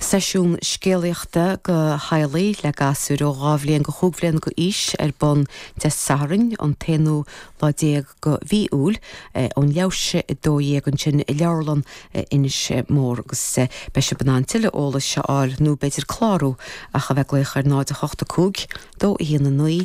Seisiún scéalaíochta go theaghlaigh le gasúir ó dhá bhliain go chúig bhliana go aois ar bun Dé Sathairn an t-aonú lá déag go mhí Iúil ón leathuair tar éis a dó dhéag ansin i Leabharlann Inis Mór agus beidh sibh in ann tuilleadh eolais a fháil nó b'fhéidir clárú ach a bheith ag glaoch ar 0 8 5 2 1 9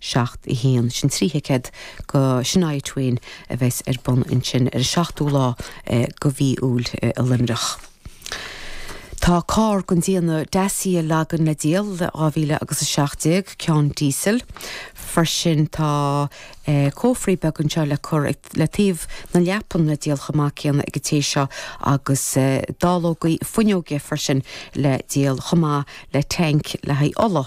7, 1, Sin trí thicéad go Shania Twain a bheas ar bun ansin ar an 7ú lá go mhí Iúil i Luimneach. Tá carr den déanamh Dacia Logan le díol, 2000 agus 17, ceann díosail. Freisin tá cófraí beaga anseo le cur ag, le taobh na leapan le díol chomh maith céanna ag an té seo agus dallógaí fuinneoige freisin le díol chomh maith le tank le haghaidh ola.